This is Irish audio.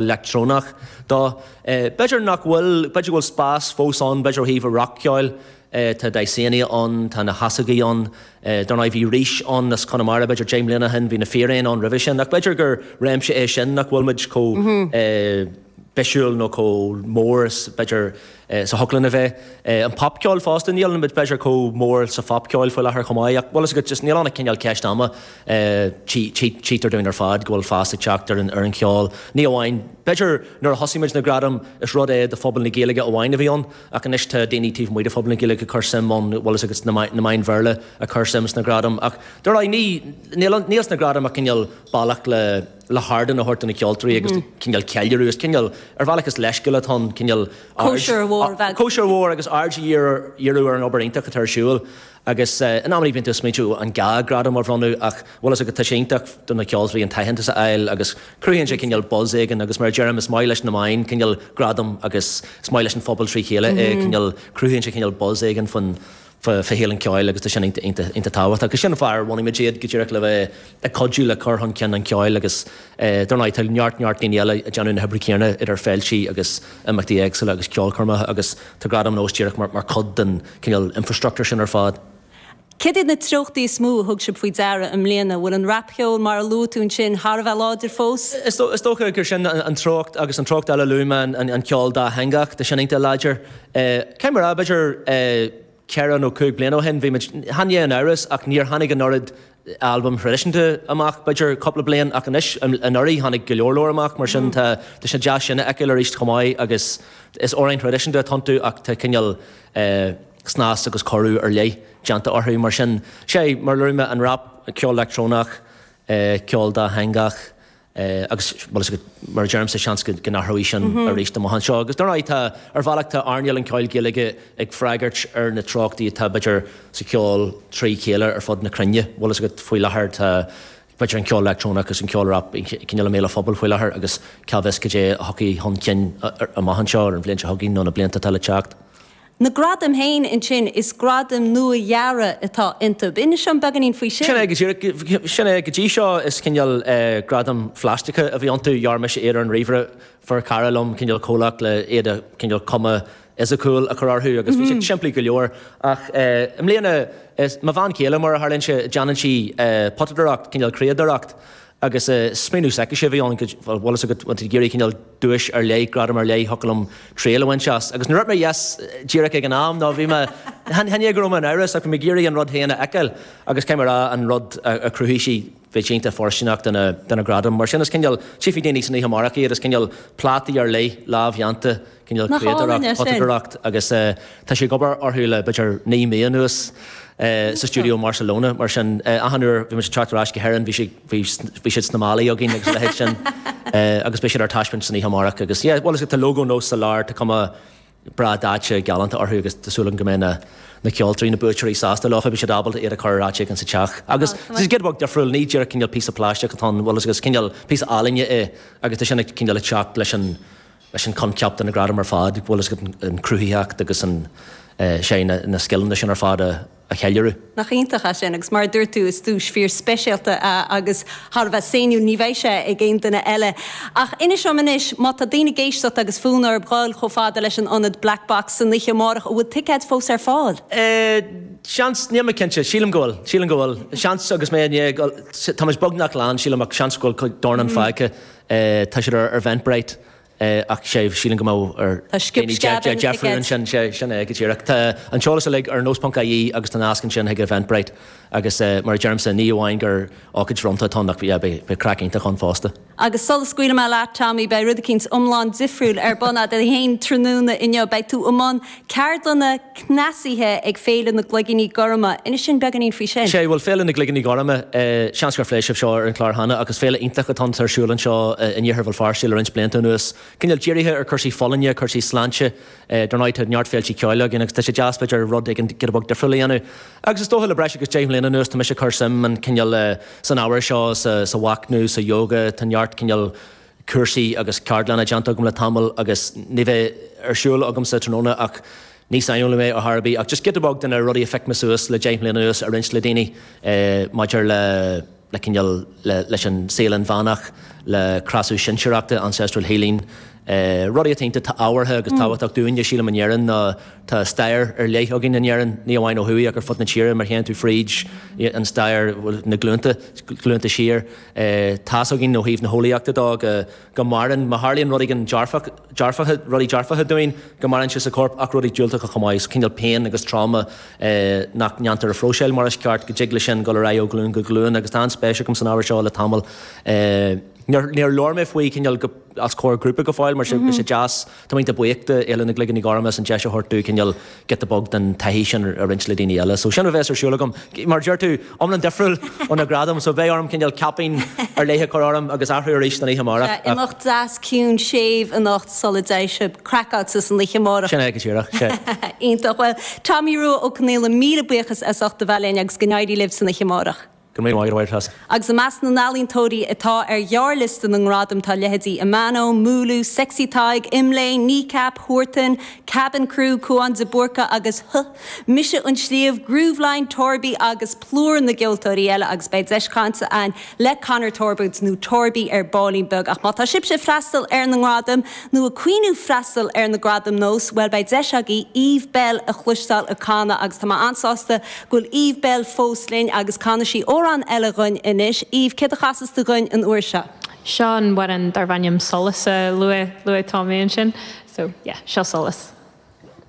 leictreonach dó. B'fhéidir nach bhfuil, b'fhéidir go bhfuil spás fós ann, b'fhéidir ó thaobh an rac-cheoil. Tá Dysania ann, tá na hEasógaí ann. Dar ndóigh bhí Rís ann as Conamara b'fhéidir deich mbliana ó shin, bhí na Fíréin ann roimhe sin. Ach b'fhéidir gur réimse é sin nach bhfuil muid chomh bisiúil nó chomh mór is b'fhéidir. is a thig linn a bheith. An popcheoil fosta, níl muid b'fhéidir chomh mór sa phopcheoil faoi láthair chomh maith ach bhfuil fhios agat just níl ann ach cineál ceist ama. Tchítear dúinn ar fad go bhfuil fás ag teacht ar an cheol, ní amháin, b'fhéidir nuair a thosaigh muid na gradaim is rud do phobal na Gaeilge amháin a bhí ann ach anois tá daoine taobh amuigh de phobal na Gaeilge ag cur suim ann, bhfuil fhios agat na meáin Bhéarla ag cur suim sna gradaim ach dar ndóigh níl sna gradaim ach cineál bealach le. le hardán a thabhairt do na ceoltóirí agus cineál ceiliúradh is cineál, ar bhealach is leithscéal atá ann, cineál aird, cóisir mhór a bheith, cóisir mhór agus aird a dhíriú ar an obair iontach atá ar siúl agus in amannaí bíonn tú ag smaointiú an gá gradam a bhronnadh ach bhfuil fhios agat tá sé iontach do na ceoltóirí an t-aitheantas a fháil agus cruthaíonn sé cineál buzz éigin agus mar a deirim is maith leis na meáin cineál gradam agus is maith leis an phobal trí chéile é cineál cruthaíonn sé cineál buzz éigin faoin faoi shaol an cheoil agus tá sin iontach tábhachtach. Agus sin an fáth ar bhunaigh muid iad, go díreach le bheith ag cuidiú le cur chun cinn an cheoil agus dar ndóigh tá neart neart daoine eile ag déanamh na hoibre céanna idir féiltí agus imeachtaí éagsúla agus ceolchoirmeacha agus tá Gradaim Nós díreach mar chuid den cineál infrastructúr sin ar fad. Céard iad na treochtaí is mó a thug sibh faoi deara i mbliana? Bhfuil an rapcheol mar a luaigh tú ansin thar a bheith láidir fós? Is dócha gur sin an treocht agus an treocht eile a luaigh mé, an ceol dátheangach, tá sin iontach láidir. Eh, cé mar b'fhéidir, eh, ceithre nó cúig bliana ó shin, bhí muid, chan ea in amhras ach níor tháinig an oiread albaim thraidisiúnta amach, b'fhéidir cúpla bliain, ach anois, an, anuraidh tháinig go leor leor amach, mar sin tá, tá sé deas sin a fheiceáil aríst chomh maith agus is amhráin thraidisiúnta atá iontu ach tá cineál, eh, snas agus cóiriú ar leith déanta orthu mar sin. Sea, mar a luaigh mé, an rap, ceol leictreonach, eh, ceol dátheangach, agus bhfuil fhios agat, mar a deirimse, seans go n-athróidh sin arís amach anseo. Agus dar ndóigh, tá, ar bhealach, tá earnáil an cheoil Gaeilge ag freagairt ar na treochtaí atá, b'fhéidir, sa cheol trí chéile ar fud na cruinne. Bhfuil fhios agat, faoi láthair, tá, b'fhéidir, an ceol leictreonach agus an ceol rap cineál i mbéal an phobail faoi láthair agus cá bhfios cad é a thiocfaidh chun cinn amach anseo ar an bhliain seo chugainn nó na blianta atá le teacht. Na gradaim féin ansin, is gradaim nua-dhearaidh atá iontub. Inis dom beagainín faoi sin. Sin é, go dtí seo is cineál gradaim phlaisteacha a bhí iontu, dhear mise iad ar an ríomhaire, fuair cara liom cineál comhlacht le iad a cineál cuma fhisiciúil a chur orthu agus bhí siad simplí go leor. Ach i mbliana, is mo bhean chéile, mar a tharlaíonn sé, déanann sí potadóireacht, cineál criadóireacht. Agus smaoineamh s'aicise, bhí an bhfuil fhios agat, bhfuil tú ag iarraidh cineál duais ar leith, gradam ar leith, thiocfadh liom triail a bhaint as. Agus ní raibh mé ar dheis díreach ag an am, nó bhí mé, chan é go raibh mé in amhras ach bhí mé ag iarraidh an rud féin a fheiceáil agus cé mar a, an rud a chruthaigh sí, bheadh sí iontach fóirstineach do na, do na gradaim. Mar sin is cineál, tchífidh daoine san oíche amárach iad, is cineál plátaí ar leith, lámhdhéanta, cineál criadóireacht, potadóireacht agus tá sí ag obair orthu le b'fhéidir naoi mí anuas sa stiúideo i mBarcelona. Mar sin, achan uair bhí muid ag teacht ar ais go hÉirinn bhí sé, bhí, bhí siad sna málaí againn agus a leithéid sin. Agus beidh siad ar taispeáint san oíche amárach agus yeah, bhuel tá lógó nós sa lár, tá cuma breá daite, galánta orthu agus tá súil agam go mbeidh na, na ceoltóirí, na buaiteoirí sásta leo, beidh siad ábalta iad a chur ar áit éigin sa teach. Agus tá sé giota beag difriúil, ní díreach cineál píosa pláisteach atá ann, bhuel is cineál píosa ealaíne é agus tá sin ag cineál ag teacht leis an, leis an coincheap atá ag na gradaim ar fad, go bhfuil fhios agat an chruthaitheacht agus an sé na scileanna sin ar fad a cheiliúradh. Nach iontach é sin agus mar a dúirt tú is duais fíorspeisialta é agus thar a bheith sainiúil, ní bheidh sé ag aon duine eile. Ach inis dom anois, má tá daoine ag éisteacht agus fonn orthub dhul chomh fada leis an ionad Black Box san oíche amárach, an bhfuil ticéid fós ar fáil? Seans, níl mé cinnte, sílim go bhfuil, sílim go bhfuil. Seans agus mé i ndiaidh, táimid beagnach lán sílim ach seans go bhfuil dornán fágtha. Eh, tá siad ar Eventbrite. Eh, ach sé, sílim go mbeadh ar daoine sciob sceab a dhéanamh fúthu ansin. Sé, sin é go díreach. Tá an t-eolas uilig ar nós ponc IE agus tá nasc ansin chuig Eventbrite. Agus eh, mar a deirimse, ní amháin gur ócáid bhronnta atá ann ach yeah, beidh beidh craic iontach ann fosta. Agus sula scaoilim mé leat, Tommy, beidh rud eicínt iomlán difriúil ar bun agat féin tráthnóna inniu. Beidh tú i mbun Ceardlanna cneasaithe ag Féile na gCloigíní Gorma. Inis dúinn beagáinín faoi sin. Sé, bhuel, Féile na gCloigíní Gorma, seans gur phléigh sibh seo ar an chlár cheana, ach is féile iontach atá ar siúl anseo in Iarthar Bhéal Feirste le roinnt blianta anuas. Cineál dírithe ar chúrsaí folláine, cúrsaí sláinte. Dar ndóigh, tá neart féiltí ceoil againn agus tá sé deas, b'fhéidir, rud éigin giota beag difriúil a dhéanamh. Agus is dócha le breis agus deich mbliana anuas tá mise ag cur suim, cineál, san ábhar seo, sa mhachnamh, sa yoga, tá neart cineál, cúrsaí agus ceardlanna déanta agam le tamall agus an ní a bheidh ar siúl agamsa tráthnóna ach ní saineolaí mé ar chor ar bith ach just giota beag de na rudaí a phioc mé suas le deich mbliana anuas a roinnt le daoine maidir le le cineál le leis an saol inmheánach le cneasú sinsearachta ancestral healing rudaí atá iontach ábhartha agus tábhachtach dúinne sílim in Éirinn nó tá stair ar leith againn in Éirinn ní amháin ó thuaidh ach ar fud na tíre má théann tú fríd an stair bhuel na glúnta glúnta siar Tá's againn ó thaobh na heolaíochta dó go maireann, má tharlaíonn rud éigin dearfach, dearfacha, rudaí dearfacha dúinn, go maireann sé sa chorp ach rudaí diúltacha chomh maith, cineál pian agus trauma nach ndéantar a phróiseáil mar is ceart, go dtig leis sin dul ar aghaidh ó ghlúin go glúin agus tá an-spéis agam san ábhar seo le tamall. Níor labhair mé faoi, cineál go, os comhair grúpa go fóill mar sin, bhí sé deas, Tá mé iontach buíoch de Fhéile na gCloigíní Gorma as an deis a thabhairt domh cineál giota beag den taithí sin a roinnt le daoine eile. So sin a bheas ar siúl agam. Mar a deir tú, iomlán difriúil ó na gradaim, so beidh orm cineál caipín ar leith a chur orm agus athrú arís don oíche amárach. Sea, imeacht deas ciúin séimh anocht sula dté sibh craiceáilte san oíche amárach. Sin é go díreach, sea. Iontach. Bhuel, Tomaí Rua Ó Conghaile, míle buíochas as ucht a bheith linn agus go n-éirí libh san oíche amárach. Go raibh míle maith agatsa. Agus i measc na n-ealaíontóirí atá ar ghearrliosta na ngradam tá leithéidí Amano, Múlú, Sexy Tadhg, Imlé, Kneecap, Huartan, Kabin Crew, Cuán de Búrca agus Huh! Mise an Sliabh, Grooveline, Torby agus plúr na gceoltóirí eile agus beidh deis cainte againn le Conor Torbitt nó Torby ar baillín beag ach má tá sibhse ag freastal ar na ngradaim nó ag cuimhneamh freastal ar na Gradaim Nós bhuel beidh deis agaibh Eve Belle a chloisteáil ag canadh agus tá mé an-sásta Bhfuil Eve Belle fós linn agus canfaidh sí amhrán eile dhúinn anois. Eve, céard a chasas tú dhúinn an uair seo? Seo amhrán darb ainm Solas a luaigh, luaigh Tomaí ansin. So, yeah, seo Solas.